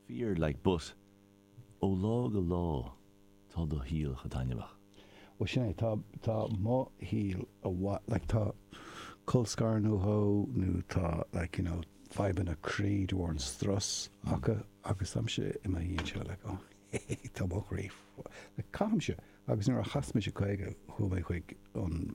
Fear like but, ó lá go lá tá do shaol chomh taitneamhach. Ó sin é, tá, tá mo shaol amhail, like tá colscaradh acu nó tá, like, you know, fadhbanna croí de bharr an strus acu agus táimse i mo shuí anseo, like, oh, he, he, he, tá mo chroí, like, caithfimse. Agus nuair a chas mise 50 chuaigh mé chuig an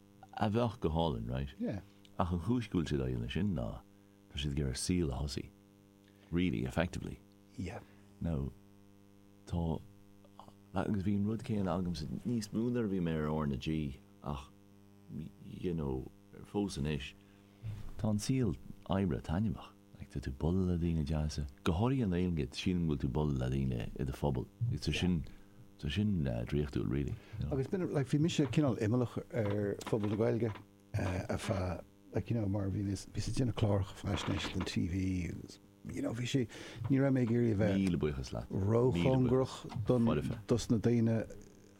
a bheadh go hálainn, raight? Yeah. Ach an chúis go bhfuil siad ag déanamh sin ná tá siad ag iarraidh saol a thosú, really, effectively. Yeah. Now, tá, agus bhí an rud céanna agamsa níos mó nuair a bhí mé ar R na G ach, you know, fós anois, tá an saol oibre taitneamhach. Like, tá tú buladh le daoine deasa, go háirithe i nGaeilge, sílim go bhfuil tú buladh le daoine i do phobal, agus tá sin, tá sin draíochtúil really, you know. Agus b'in, like, bhí mise cineál imeallach ar phobal na Gaeilge ar feadh, like, you know, mar bhí mé, bhíos ag déanamh cláracha faisnéise don TV agus, you know, bhí sé, ní raibh mé ag iarraidh a bheith róchóngarach don, dos na daoine,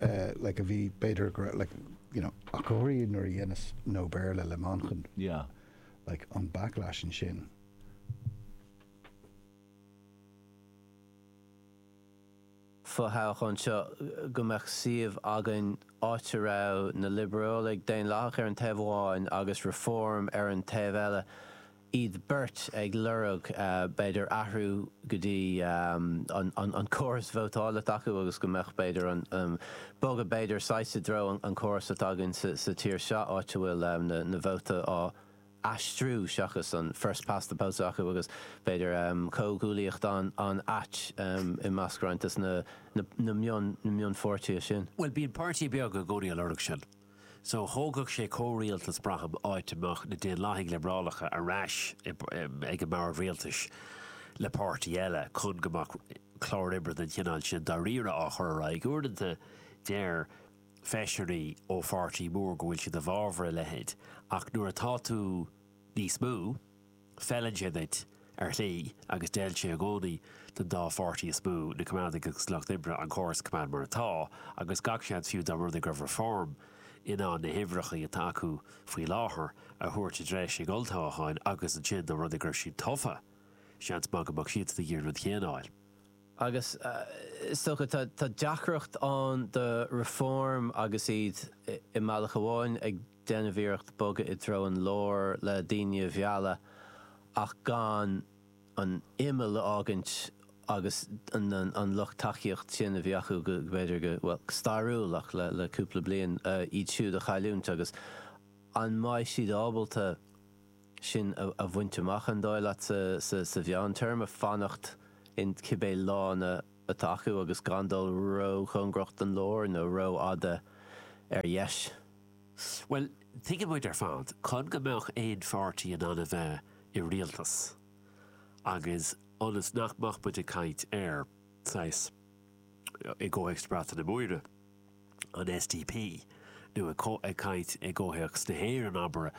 uh, like, a bhí, b'fhéidir, like, you know, ach go háirithe nuair a dheineas No Béarla le Manchán. Yeah. like an backlash ansin. fo-thoghchán seo go mbeadh suíomh againn áit a raibh na Liobrálaigh Dhaonlathacha ar an taobh amháin agus Reform ar an taobh eile, iad beirt ag lorg b'fhéidir athrú go dtí an córas vótála s'acu agus go mbeadh b'fhéidir an bogadh b'fhéidir saghas i dtreo an córas atá againn sa tír seo áit a bhfuil na vótaí á n-aistriú seachas an first past the post atá acu agus b'fhéidir comhghuaillíocht an-ait i measc roinnt des na mion-pháirtithe sin. Bhuel, bíonn páirtithe beaga i gcónaí ag lorg sin. So, thógfadh sé comhrialtas, braithim, áit a mbeadh na Daonlathaigh Liobrálacha ar ais ag an mbord rialtais le páirtí eile, chun go mbeadh clár oibre den chineál sin dáiríre á chur ar aghaidh. Uaireanta, deir feisirí ó pháirtí mór go bhfuil siad i bhfabhar a leithéid, ach nuair atá tú níos mó, Feileann sé duit, ar shlí, agus d'fheil sé i gcónaí don dá pháirtí is mó, na Coimeádaigh agus Lucht Oibre, an córas a choimeád mar atá, agus gach seans fiú dá mba rud é go raibh Reform in ann na huimhreacha atá acu faoi láthair a thabhairt i dtreo an olltoghcháin agus ansin dá mba rud é go raibh siad tofa, seans maith go mbeadh siadsan ag iarraidh an rud a choinneáil. Agus is dócha tá deacracht ann do Reform agus iad i mbealach amháin ag. déanamh iarrachta bogadh i dtreo an lár le daoine a mhealladh ach gan an imeall a fhágaint agus an lucht tacaíocht sin a bhí acu go, b'fhéidir go, bhuel, go stairiúil ach le cúpla bliain, iad siúd a chailliúint agus an mbeidh siad ábalta sin a bhaint amach, an dóigh leat, sa mheántéarma, fanacht in cibé lána atá acu agus gan dul róchóngarach don lár nó rófhada ar dheis? Bhuel, tuigeann muid ar fad, chun go mbeadh aon pháirtí in ann a bheith i rialtas, agus ionas nach mbeadh muid ag caint ar, saghas, i gcomhthéacs na Breataine Móire, an SDP, nó ag caint i gcomhthéacs na hÉireann, abair,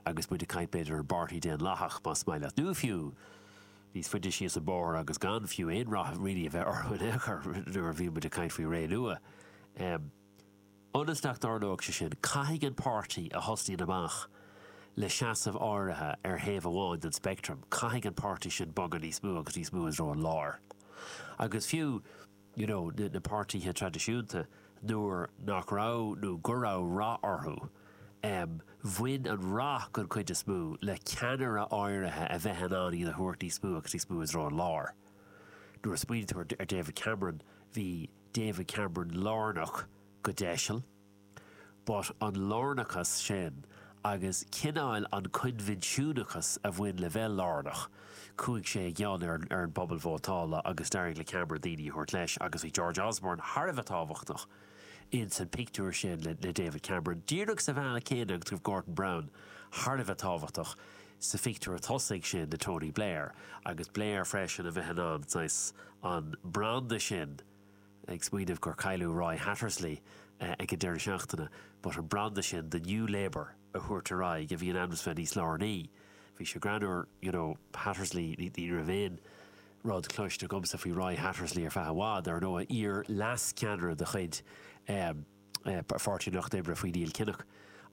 agus muid ag caint, b'fhéidir, ar an bPáirtí Daonlathach, más maith leat, nó fiú, níos faide síos an bóthar agus gan fiú aon rath really a bheith orthu in aon chor, nuair a bhíonn muid ag caint faoi Ré Nua. Ionas nach dtarlóidh sé sin, caithfidh an páirtí a thosnaíonn amach le seasamh áirithe ar thaobh amháin den speictream, caithfidh an páirtí sin bogadh níos mó agus níos mó i dtreo an láir. Agus fiú, you know, na páirtithe traidisiúnta, nuair nach raibh, nó go raibh rath orthu, em, bhain an rath, den chuid is mó, le ceannaire áirithe a bheith in ann iad a thabhairt níos mó agus níos mó i dtreo an láir. Nuair a smaoinítear ar David Cameron, bhí, David Cameron lárnach go deiseal, but an lárnachas sin agus cineál an coinbhinsiúnachas a bhain le bheith lárnach, chuaigh sé i gcion ar an bpobal vótála agus d'éirigh le Cameron daoine a thabhairt leis agus bhí George Osborne thar a bheith tábhachtach ins an pictiúr sin le David Cameron, díreach sa bhealach céanna agus go raibh Gordon Brown thar a bheith tábhachtach sa phictiúr tosaigh sin le Tony Blair agus Blair freisin a bheith in ann, saghas. an branda sin, ag smaoineamh gur cailleadh Roy Hattersley ag an deireadh seachtaine, but an branda sin de New Labour a thabhairt ar aghaidh a bhí in ainm is bheith níos lárnaí. Bhí sé greannúr, you know, Hattersley, ní raibh aon rud cloiste agamsa faoi Roy Hattersley ar feadh i bhfad, ar ndóigh, iar-leas-ceannaire de chuid Pháirtí an Lucht Oibre faoi Neil Kinnock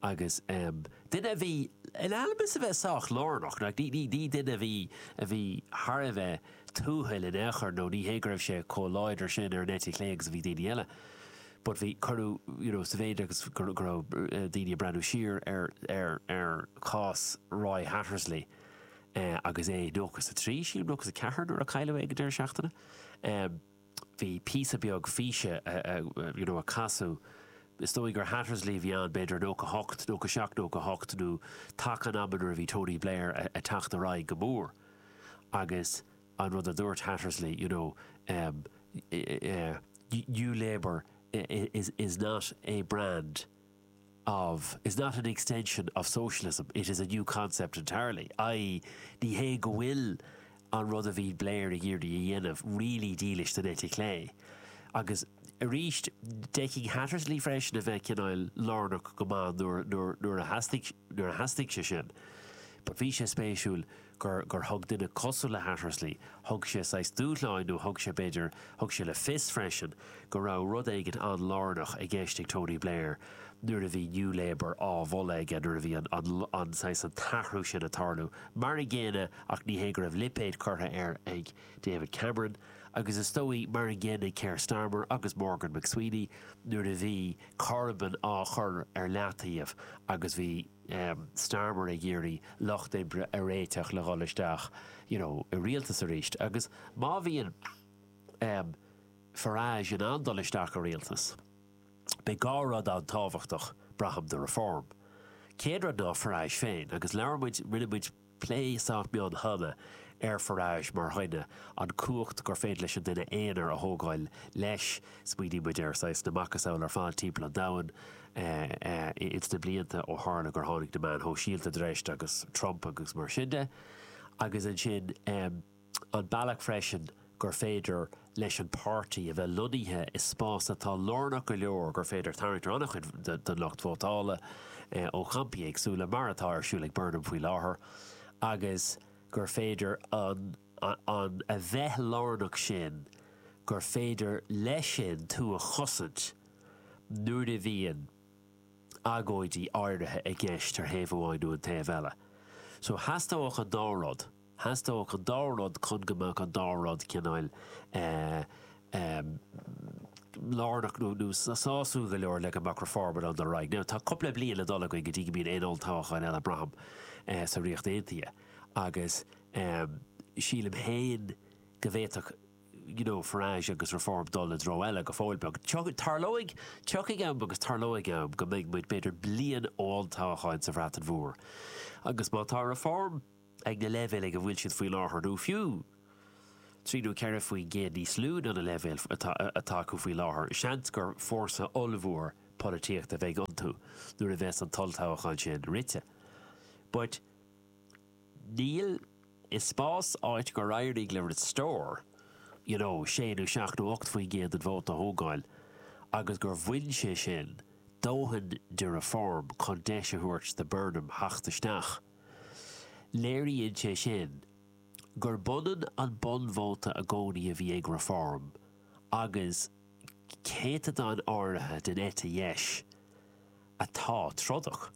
agus duine a bhí in ainm is a bheith sách lárnach, ní duine a bhí a bhí thar a bheith tuathail in aon chor nó ní hé go raibh sé chomh láidir sin ar an eite chlé agus a bhí daoine eile but bhí, cuireadh you know sa mhéid agus go raibh daoine ag breathnú siar ar ar ar chás Roy Hattersley agus é 93 sílim nó 94 nuair a cailleadh é ag an deireadh seachtaine. bhí píosa beag físe you know a casadh, is dóigh gur Hattersley a bhí ann, b'fhéidir in 98, 97, 98 nó taca an ama nuair a bhí Tony Blair a' teacht ar aghaidh go mór agus an rud a dúirt Hattersley you know ehm, yeah, New Labour is, is not a brand. of, is not an extension of socialism, it is a new concept entirely, i.e. ní hé go bhfuil an rud a bhí Blair ag iarraidh a dhéanamh really dílis don eite chlé. Agus arís, d'fhéadfadh Hattersley freisin a bheith cineál lárnach go maith nuair a theastaigh sé sin. But bhí sé spéisiúil. gur, gur thug duine cosúil le Hattersley, thug sé saghas dúshlán nó thug sé, b'fhéidir, thug sé le fios freisin go raibh rud éigin an-lárnach i gceist ag Tony Blair nuair a bhí New Labour á mholadh aige, nuair a bhí an, an, an, saghas, an t-athrú sin ag tarlú. Mar an gcéanna, ach ní hé go raibh lipéad curtha air ag David Cameron, agus is dóigh, mar an gcéanna ag Keir Starmer agus Morgan McSweeney, nuair a bhí Corbyn á chur ar leataobh agus bhí, Starmer ag iarraidh Lucht Oibre a réiteach le dhul isteach you know i rialtas arís agus má bhíonn Farage in ann dul isteach i rialtas, beidh dhá rud an-tábhachtach, braithim, do Reform. Céad rud ná Farage féin agus labhair muid, rinne muid, Plé sách mion cheana ar Farage mar dhuine, an cumhacht gur féidir leis an duine aonair a thógáil leis. Smaoiníonn muid ar saghas na macasamhail ar fad timpeall an domhain ins na blianta ó tharla gur tháinig na meáin shóisialta chun treise agus Trump agus mar sin de. Agus ansin. an bealach freisin gur féidir leis an páirtí a bheith lonnaithe i spás atá lárnach go leor gur féidir tarraingt ar an-chuid den lucht vótála ó champaí éagsúla, mar atá ar siúl ag Burnham faoi láthair, agus gur féidir an a bheith lárnach sin gur féidir leis sin tú a chosaint nuair a bhíonn agóidí áirithe i gceist ar thaobh amháin nó an taobh eile. So theastódh an dá rud. theastódh an dá rud chun go mbeadh an dá rud cineál lárnach nó sásúil go leor le go mbeadh Reform in ann dul ar aghaidh. Now, tá cúpla bliain le dul againn go dtí go mbíonn aon olltoghchán eile, braithim, sa Ríocht Aontaithe agus sílim féin go bhféadfadh, you know, Farage agus Reform dul i dtreo eile go fóill beag. Tarlóidh, tiocfaidh am agus tarlóidh am go mbeidh muid, b'fhéidir, bliain ó olltoghchán sa Bhreatain Mhór agus má tá Reform, ag na leibhéil ag a bhfuil siad faoi láthair, nó fiú trí nó ceithre faoin gcéad níos lú ná na leibhéil atá acu faoi láthair, seans gur fórsa ollmhór polaitíochta a bheidh iontu nuair a bheas an t-olltoghchán sin rite. But in aon spás áit gur éirigh le Restore, you know, sé nó seacht nó ocht faoin gcéad den vóta a thógáil agus gur bhain sé sin dóthain de Reform chun deis a thabhairt do Burnham theacht isteach. Léiríonn sé sin gurb ionann an bunvóta i gcónaí a bhí ag Reform agus céatadán áirithe den eite dheis atá trodach.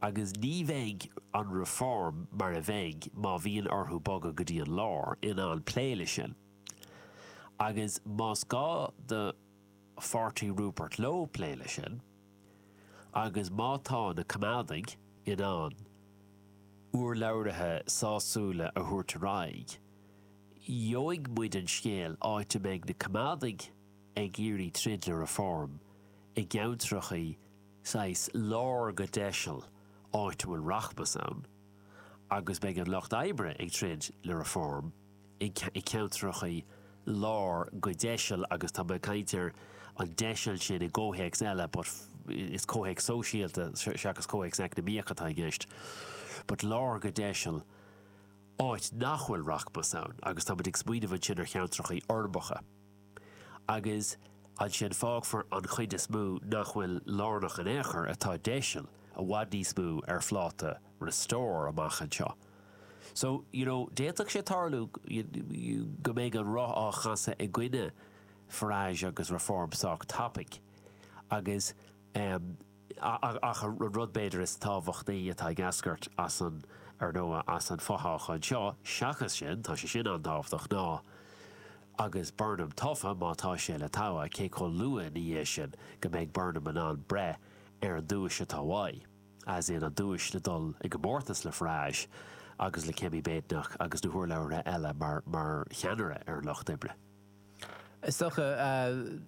Agus ní bheidh an Reform mar a bheidh má bhíonn orthu bogadh go dtí an lár in ann plé leis sin. Agus más gá do pháirtí Rupert Lowe plé leis sin, agus má tá na Coimeádaigh in ann urlabhraithe sásúla a thabhairt ar aghaidh, gheobhaidh muid an scéal, áit a mbeidh na Coimeádaigh ag iarraidh troid le Reform i gceantrachaí saghas lár go deiseal, áit a bhfuil rachmas ann, agus beidh an Lucht Oibre ag troid le Reform. i gceantrachaí lár go deiseal, agus tá mé ag caint ar an deiseal sin i gcomhthéacs eile, but is comhthéacs sóisialta seachas comhthéacs eacnamaíoch atá i gceist, but lár go deiseal, áit nach bhfuil rachmas ann, agus táimid ag smaoineamh ansin ar cheantracha urbacha. Agus ansin fágfar an chuid is mó nach bhfuil lárnach in aon chor, atá deiseal, i bhfad níos mó, ar phláta Restore amach anseo. So, you know, d'fhéadfadh sé tarlú go mbeidh an roth á chasadh i gcoinne Farage agus Reform sách tapaigh agus, eh, Ach an rud b'fhéidir is tábhachtaí atá ag eascairt as an, ar ndóigh, as an fothoghchán seo, seachas sin, tá sé sin an-tábhachtach, ná, agus Burnham tofa, má tá sé le togha, cé chomh luath ina dhiaidh sin go mbeidh Burnham in ann breith ar an duais atá uaidh, sé sin an duais le dul i gcomórtas le Farage agus le Kemi Badenoch agus na hurlabhraithe eile mar cheannaire ar an Lucht Oibre. Is dócha,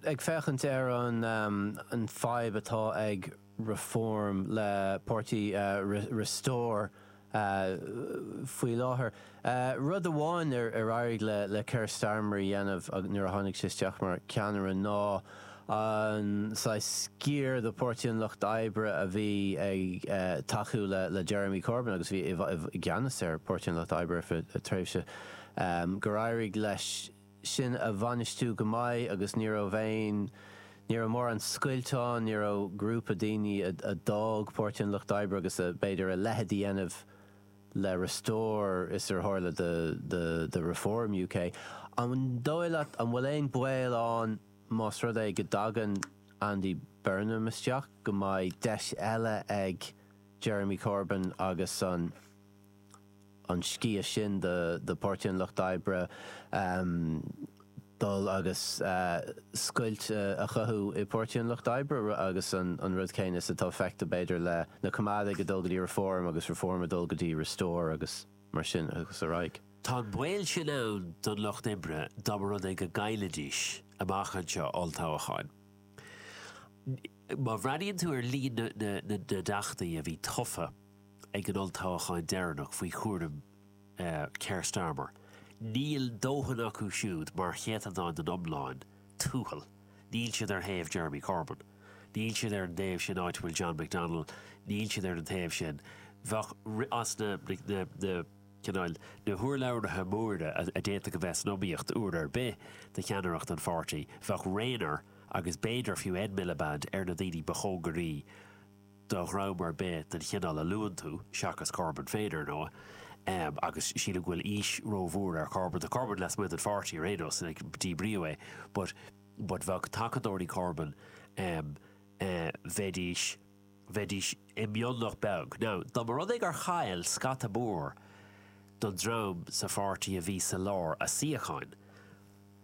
ag féachaint ar an fhadhb atá ag Reform le páirtí Restore faoi láthair, rud amháin ar éirigh le Keir Starmer a dhéanamh nuair a tháinig sé isteach mar cheannaire ná an saghas sciar de Pháirtí an Lucht Oibre a bhí ag tacú le Jeremy Corbyn agus a bhí i gceannas ar Pháirtí an Lucht Oibre ar feadh tréimhse gur éirigh leis sin a bhainistiú go maith agus ní raibh aon, ní raibh mórán scoilt ann, ní raibh grúpa daoine a d'fhág Páirtí an Lucht Oibre agus a, b'fhéidir, a leithéid a dhéanamh le Restore is ar tharla do Reform UK. An dóigh leat, an bhfuil aon baol ann más rud é go dtagann Andy Burnham isteach go mbeidh deis eile ag Jeremy Corbyn agus an, an sciath sin do Pháirtí an Lucht Oibre dul agus scoilt a chothú i bPáirtí an Lucht Oibre agus an rud céanna is atá feicthe b'fhéidir le na Coimeádaigh a dul go dtí Reform agus Reform a dul go dtí Restore agus mar sin agus ar aghaidh. Tá an baol sin ann don Lucht Oibre dá mba rud é go gcaillfidís amach anseo olltoghacháin. Má bhreathnaíonn tú ar líon na dteachtaí a bhí tofa, ag an olltoghchán deireanach faoi chúram Keir Starmer, níl dóthain acu siúd mar chéatadán den iomlán, a Thuathail, níl siad ar thaobh Jeremy Corbyn, níl siad ar an taobh sin áit a bhfuil John McDonnell, níl siad ar an taobh sin, bheadh as na, na, cineál, na hurlabhraithe móra a d'fhéadfadh a bheith san iomaíocht uair ar bith do cheannaireacht an pháirtí, bheadh Rayner agus b'fhéidir fiú Ed Miliband ar na daoine ba chóngaraí, do dhream ar bith den chineál a luann tú, seachas Corbyn féin, ar ndóigh, agus sílim go bhfuil aois rómhór ar Corbyn. Tá Corbyn lasmuigh den pháirtí ar aon nós, díbríodh é, but, but bheadh tacadóirí Corbyn, bheidís, bheidís i mionlach beag. Now, dá mba rud é gur chaill scata mór den dream sa pháirtí a bhí sa lár a suíocháin,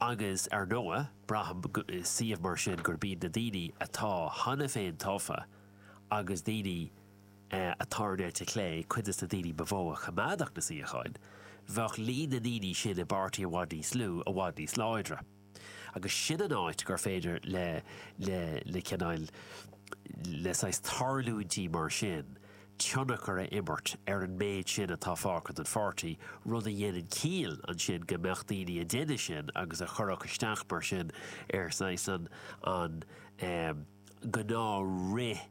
Agus, ar ndóigh, braithim, i suíomh mar sin, gurb iad na daoine atá cheana féin tofa agus daoine atá ar an eite chlé cuid des na daoine ba mhó a choimeádfadh na suíocháin. Bheadh líon na ndaoine sin i bpáirtí i bhfad níos lú, i bhfad níos láidre. Agus sin an áit gur féidir le, le, le cineál, le saghas tarlúintí mar sin tionchar a imirt ar an méid sin atá fágtha den pháirtí, rud a dhéanann ciall ansin go mbeadh daoine á dhéanamh sin agus a chuirfeadh isteach mar sin ar, saghas, an gnáth-fhrith-.